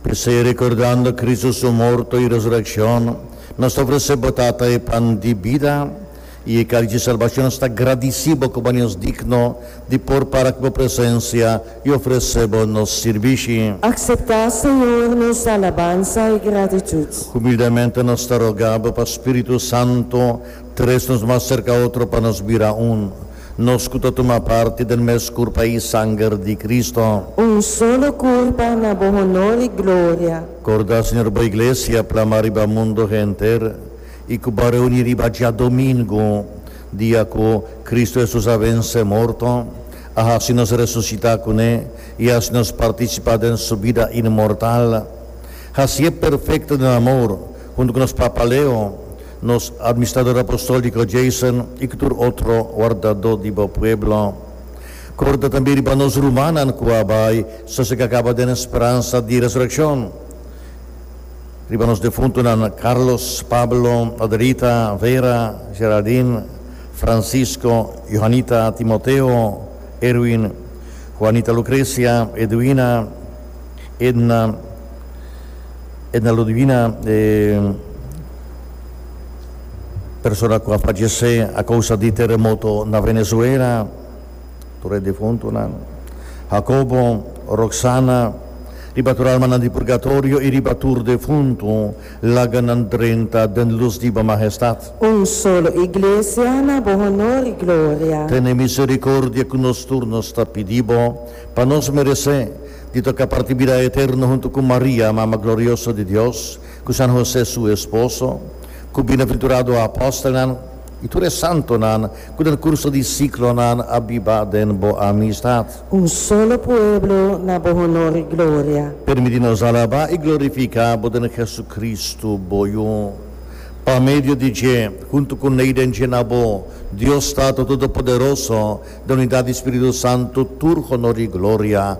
P'esei, rekordando Kristu su morto i resurekshon, nos ta ofresé bo, Tata, e pan di bida i e kalis di salbashon. Nos ta gradisí bo ku bo hasi nos digno di por para ku bo presensia i ofresé bo nos sirbishi. Akseptá, Señor, nos alabansa i gratitut. Humildemente nos ta rogá bo pa spiritu santu tres nos mas serka otro pa nos bira un. Nos cu ta tuma parti den mes curpa y sanger di Cristo. Un solo curpa na bo honor y gloria. Corda, Señor, bo Iglesia plama riba mundo henter y cu bo reuni riba djadomingo, dia cu Cristo Jesus a vence morto, a haci nos resucita cu ne y haci nos participa den su bida inmortal. Haci'e perfecto den amor, hunto cu nos papa Leo, Nos Administrador Apostolco Jason y cu tur otro wardador di bo pueblo. Corda tambe riba nos rumannan cu a bay sa si cacaba den speransa di resurreccion. Riba nos defuntonan Carlos, Pablo, Adelita, Vera, Geraldine, Francisco, Johanita, Timoteo, Erwin, Juanita Lucrecia, Edwina, Edna, Edna Ludwina, e. persona ku a fallecé a kousa di teremoto na Venezuela, tur e difuntunan, Jacobo, Roxana, riba tur almanan di purgatorio i riba tur difuntu, laga nan drenta den lus di bo Mahestad. Un solo Iglesia na bo honor i gloria. Tene misericordia ku nos tur nos ta pidi bo, pa nos meresé di toka parti bida eterno huntu ku Maria, Mama Glorioso di Dios, ku San Hosé su esposo, ku bienaventurado apòstelnan i tur e santonan ku den kurso di siklonan a biba den bo amistat. Un solo pueblo na bo honor i gloria. Permití nos alabá i glorifiká bo den Jesucristo, bo Yu. Pa medio di dje, huntu ku Neiden dje na bo, Dios Tata Todopoderoso, den unidat di Spiritu Santu, tur honor i gloria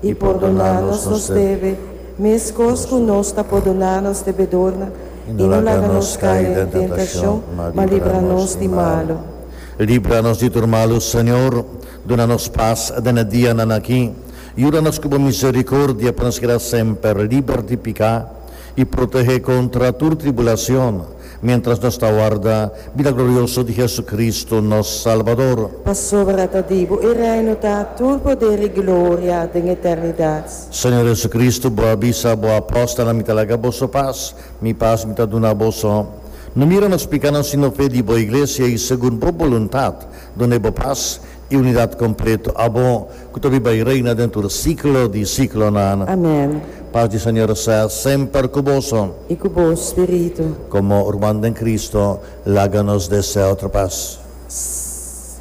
I pordona nos nos debe, meskos ku nos ta pordona nos debedornan, i no laga nos kai den tentashon, ma libra nos di malu. Libra nos di tur malu, Señor, duna nos pas den e dianan aki. Yuda nos ku bo miserikordia pa nos keda semper liber di piká i protehé kontra tur tribulacion, Miéntras nos ta warda bida glorioso di Jesucristo, nos Salbador. Pasobra ta di bo e reino ta tur poder i gloria den eternidat. Señor Jesucristo, bo a bisa bo apòstelnan, Mi ta laga boso pas, Mi pas Mi ta duna boso. No mira nos pikánan, sino fe di bo Iglesia, i segun bo boluntat duna e bo pas. E unidat completo abo cu ta biba y reina den tur siclo di siclonan. Amen. Pas di Señor sea semper cu boso. Y cu bo spiritu. Como urman den Cristo, laga nos deseo tra pas.